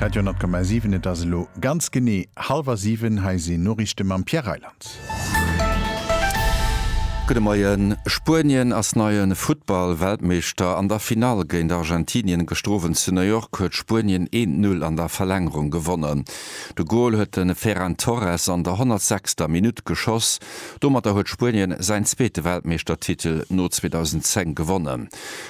Radio Nord Komm aus 7, et ass elo ganz genee hallwer 7, hei sinn Noriichte mam Pierre Reyland. Gudde Moien, Spuenien ass neie Futtball-Weltmeeschter. An der Finall géint Argentinien gestrowend zu New York huet Spuenien een Null an der Verlängerung gewonnen. De Gol huet de Ferran Torres an der 106. Minutt geschoss. Domatter huet Spuenien säin zweete Weltmeeschtertitel no 2010 gewonnen.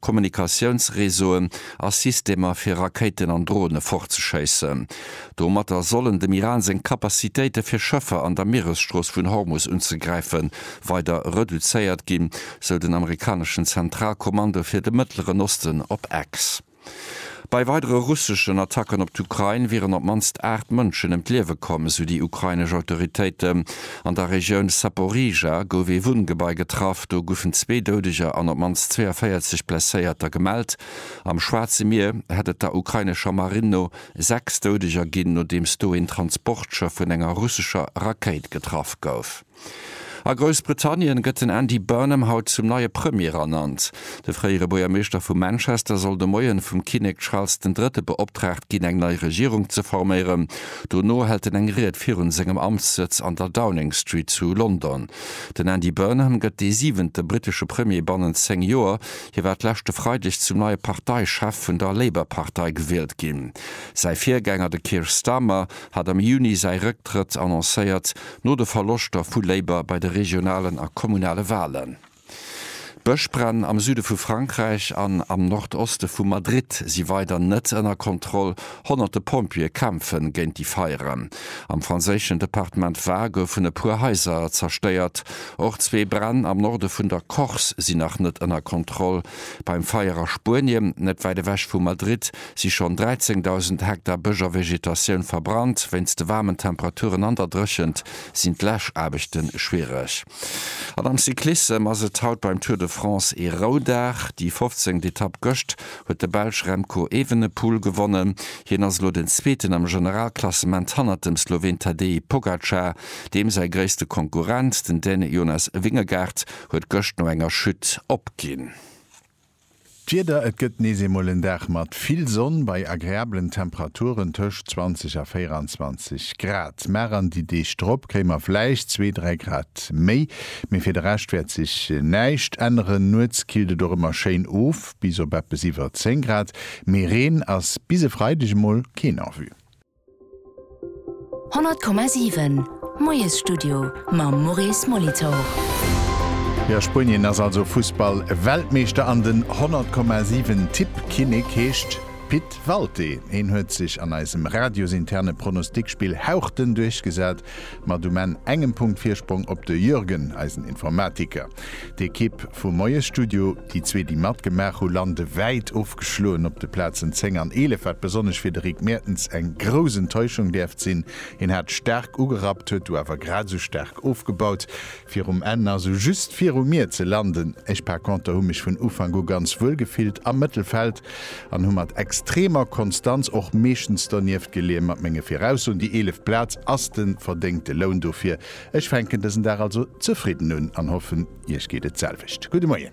Kommunikatiounsreseauen a Systemer fir Rakéiten an Drone fortzeschéissen. Domatter sollen dem Iran seng Kapazitéite fir Schëffer an der Mieresstrooss vun Hormus unzegräife weider reduzéiert ginn, sou den amerikaneschen Zentralkommando fir de Mëttleren Osten op X. Bei weidere russeschen Attacken op d'Ukrain wieren op d'mannst 8 Mënschen ëm d'Liewe komm, esou déi ukrainesch Autoritéiten. An der Regioun Saporizhzhia gouf ee Wunngebai getraff. Do goufen zwee Doudeger an op d'mannst 42 Blesséierter gemellt. Am Schwaarze Mier hätt et der ukrainescher Marinn no 6 Doudeger ginn, nodeems do een Transportschëff vun enger russescher Rakéit getraff gouf. A Groussbritannien gëtt den Andy Burnham haut zum neie Premier ernannt. De fréiere Buergermeeschter vu Manchester soll de Moien vum Kinnek Charles den Drëtte beoptraagt ginn eng nei Regierung ze forméieren. Dono hält en eng Ried virun sengem Amtssëtz an der Downing Street zu London. Den Andy Burnham gëtt dee siwente brittesche Premier bannent 10 Joer. Hie war d'leschte Freideg zum neie Parteichef vun der Labour-Partei gewielt ginn. Säi Virgänger de Keir Starmer hat am Juni säi Rëcktrëtt annoncéiert, no de Verloschter vu Labour bei de regionalen a kommunale Walen. D'Bëschbränn am Süde vu Frankräich an am Nordoste vu Madrid si weider net ënner Kontroll, honnerte Pompjeeë kämpfe géint déi Feieren. Am franséischen Departement Var goufen e puer Haiser zerstéiert. Och zwee Bränn am Norde vun der Corse sinn nach net ënner Kontroll. Beim Feier a Spuenie, net wäit ewech vu Madrid, si schonn 13.000 Hektar Bësch a Vegetatioun verbrannt. Wéinst de waarmen Temperaturen an der Dréchent sinn d'Läschaarbechte schwiereg. An am Cyclissem ass et haut beim Tour de France ee Roudag. Déi fofzéngt Etapp gëscht huet de Belsch Remco Evenepoel gewonnen. Hien ass elo den Zweeten am Generalklassement hannert dem Sloween Tadej Pogacar. Deem säi gréisste Konkurrent, den Däne Jonas Vingegaard, huet gëscht no enger Chute opginn. D'Wieder, Et gëtt nees eemol en Dag mat vill Sonn bei agreablen Temperaturen tëscht 20 a 24 Grad. Mar an déi Deeg drop kréie mer vläicht zwee, dräi Grad méi, mee fir de Rescht wäert sech näischt änneren. Nuets killt et och ëmmer schéin of bis op eppes iwwer 10 Grad, mee Reen ass bis e Freideg emol keen en vue. 100,7 Moiesstudio mam Maurice Molitor. Jo, Spunien ass also Fussball-Weltmeeschter an den 100,7 Tippkinnek heescht Pit Walté. Heen huet sech an eisem radiosinterne Pronostikspill hauchdënn duerchgesat, mat um Enn engem Punkt Virsprong op de Jürgen, eisen Informatiker. D'Ekipp vum Moiesstudio. Déi zwee, déi matgemaach hu lande wäit ofgeschloen op de Plazen 10 an 11, wat besonnesch fir de Rick Mertens eng grouss Enttäuschung däerft sinn. Hien hat staark ugerappt, huet du awer grad esou staark ofgebaut, fir um Enn also just viru mir ze landen. Ech par conter hu mech vun Ufank u ganz wuel gefillt am Mëttelfeld an hu mat extremer Konstanz och meeschtens donieft geleeë mat menge Viraussoen. Déi eeleft Plaz ass de verdéngte Loun dofir, Ech fänken dësen Dag also zefridden un an hoffen iech geet et selwecht. Gudde Moien.